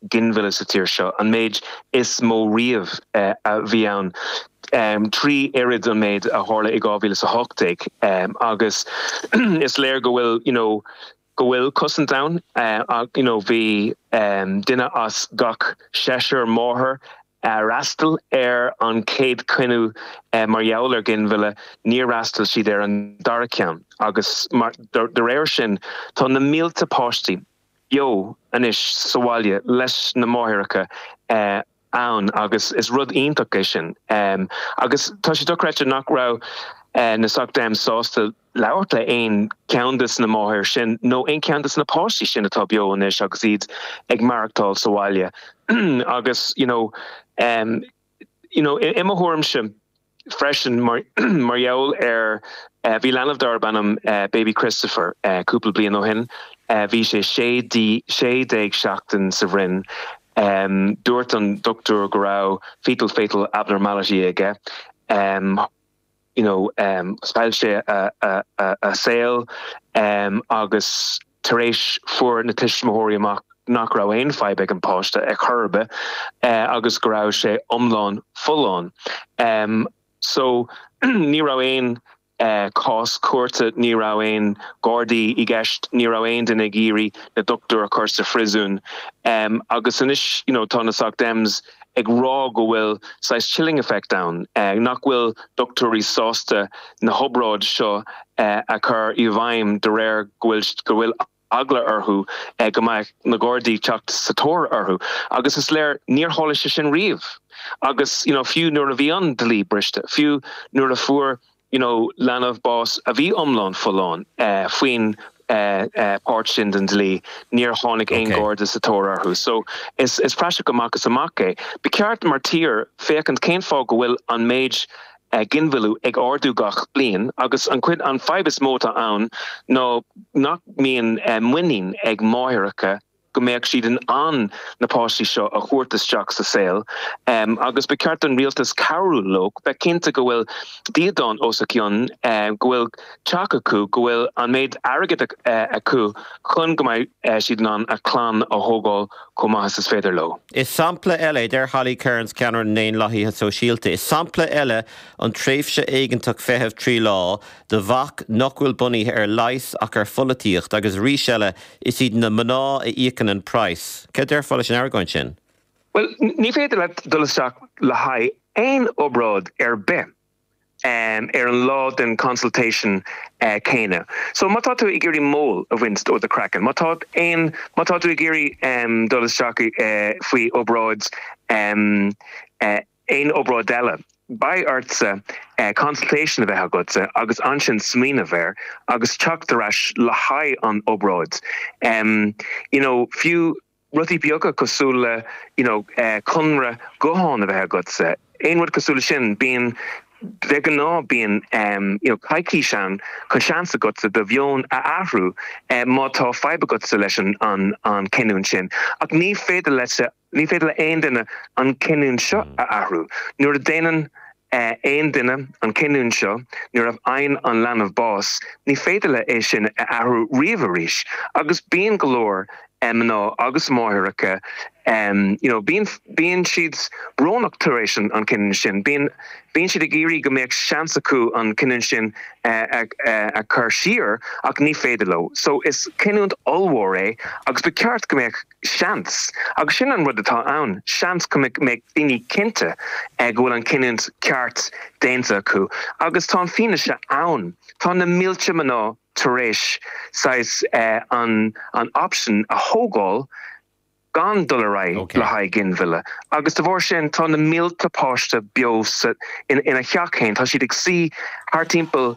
ginmhilleadh sa tír seo, an méid is mó riamh a bhí ann, trí oiread an méid a tharla i 2018, agus is léir go bhfuil you know go bhfuil cosaint ann ach you know bhí duine as gach seisear máthair a d'fhreastail ar an chéad choinne mar gheall ar ghinmhilleadh, níor fhreastail siad ar an dara ceann agus mar de réir sin tá na mílte páistí. beo anois sa bhaile leis na máithreacha agus is rud iontach é sin. Agus tá sé dochreidte nach raibh na Soc Dems sásta labhairt le haon cheann des na máthair sin nó aon cheann des na páistí sin atá beo anois agus iad ag maireachtáil sa bhaile. Agus, you know, you know, i mo thuairimse freisin mar gheall ar eh, bhí leanbh darb ainm eh, Baby Christopher eh, cúpla bliain ó shin eh, bhí sé 16 seachtain sa bhroinn em, dúirt an dochtúir go raibh fetal fatal abnormality aige em, you know, chaill sé a saol agus tar éis fuair na tuismitheoirí amach nach raibh aon fadhb ag an páiste ar chor ar bith agus go raibh sé iomlán folláin. So ní raibh aon cás cúirte, ní raibh aon ghardaí i gceist, ní raibh aon duine ag iarraidh na dochtúir a chur sa phriosún agus anois, you know, tá na Soc Dems ag rá go bhfuil saghas chilling effect ann, nach bhfuil dochtúirí sásta na hobráidí seo a chur i bhfeidhm de réir go bhfuil eagla orthu go mbeadh na Gardaí teacht sa tóir orthu. Agus is léir níor tharla sé sin riamh. Agus you know fiú nuair a bhí an dlí briste, fiú nuair a fuair you know leanbh, bás a bhí iomlán folláin faoin páirt sin den dlí, níor tháinig aon Garda sa tóir orthu. So is is praiseach amach is amach é. Ba cheart mar tír féachaint cén fáth go bhfuil an méid ginmhilleadh ag ardú gach bliain agus an chuid an fhadhb is mó atá ann ná nach mbíonn muinín ag máithreacha go mbeadh siad in ann na páistí seo a thabhairt isteach sa saol agus ba cheart don Rialtas cabhrú leo, bheith cinnte go bhfuil dídean os a gcionn, go bhfuil teach acu, go bhfuil an méid airgid acu chun go mbeidh siad in ann a clann a thógáil chomh maith is is féidir leo. Is sampla eile, a deir Holly Cairns, ceannaire na nDaonlathaithe Sóisialta, is sampla eile an tréimhse éigeantach feitheamh trí lá do bhac nach bhfuil bunaithe ar leigheas ach ar pholaitíocht agus arís eile is iad na mná a íocann an praghas. Cad a déarfá leis an argóint sin? Bhuel, ní féidir leat dul isteach le haghaidh aon obráid ar bith ar an lá den consultation céanna. So má tá tú ag iarraidh mol a bhaint ó do chraiceann, má tá aon, má tá tú ag iarraidh dul isteach faoi obráid aon obráid eile. Beidh ortsa consultation a bheith agatsa agus ansin smaoineamh air agus teacht ar ais le haghaidh an obráid. You know, fiú rudaí beaga cosúil le, you know, conradh gutháin a bheith agatsa, aon rud cosúil le sin, bíonn, de ghnáth bíonn, you know, coicís ann chun seans agatsa do mheon a athrú má tá fadhb agatsa leis an gcinniúint sin. Ach ní féidir leatsa Ní féidir le haon duine an cinniúint seo a athrú. Nuair a déanann aon duine an cinniúint seo, nuair a fhaigheann an leanbh bás, ní féidir leat é sin a athrú riamh arís agus bíonn go leor mná agus máithreacha you know bíonn, bíonn siad brónach tar éis an cinniúint sin, bíonn, bíonn siad ag iarraidh go mbeadh seans acu an cinniúint sin a chur siar ach ní féidir leo. So is cinniúint ollmhór é agus ba cheart go mbeadh. seans, agus sin an rud atá ann, seans go mbeidh daoine cinnte go bhfuil an cinniúint ceart déanta acu. Agus tá an fianaise ann. Tá na mílte mná tar éis saghas an option a thógáil gan dul ar aghaidh le haghaidh ginmhilleadh. Agus de bharr sin, tá na mílte páiste beo sa teach féin, tá siad ag suí thart timpeall,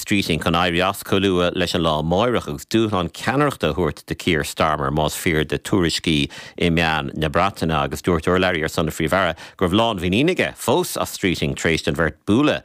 Streeting chun éirí as chomh luath leis an lá amáireach agus dúshlán ceannaireachta a thabhairt do Keir Starmer más fíor do thuairiscí i meáin na Breataine agus dúirt urlabhraí ar son an Phríomh-Aire go raibh lánmhuinín aige fós as Streeting tar éis don bheirt bualadh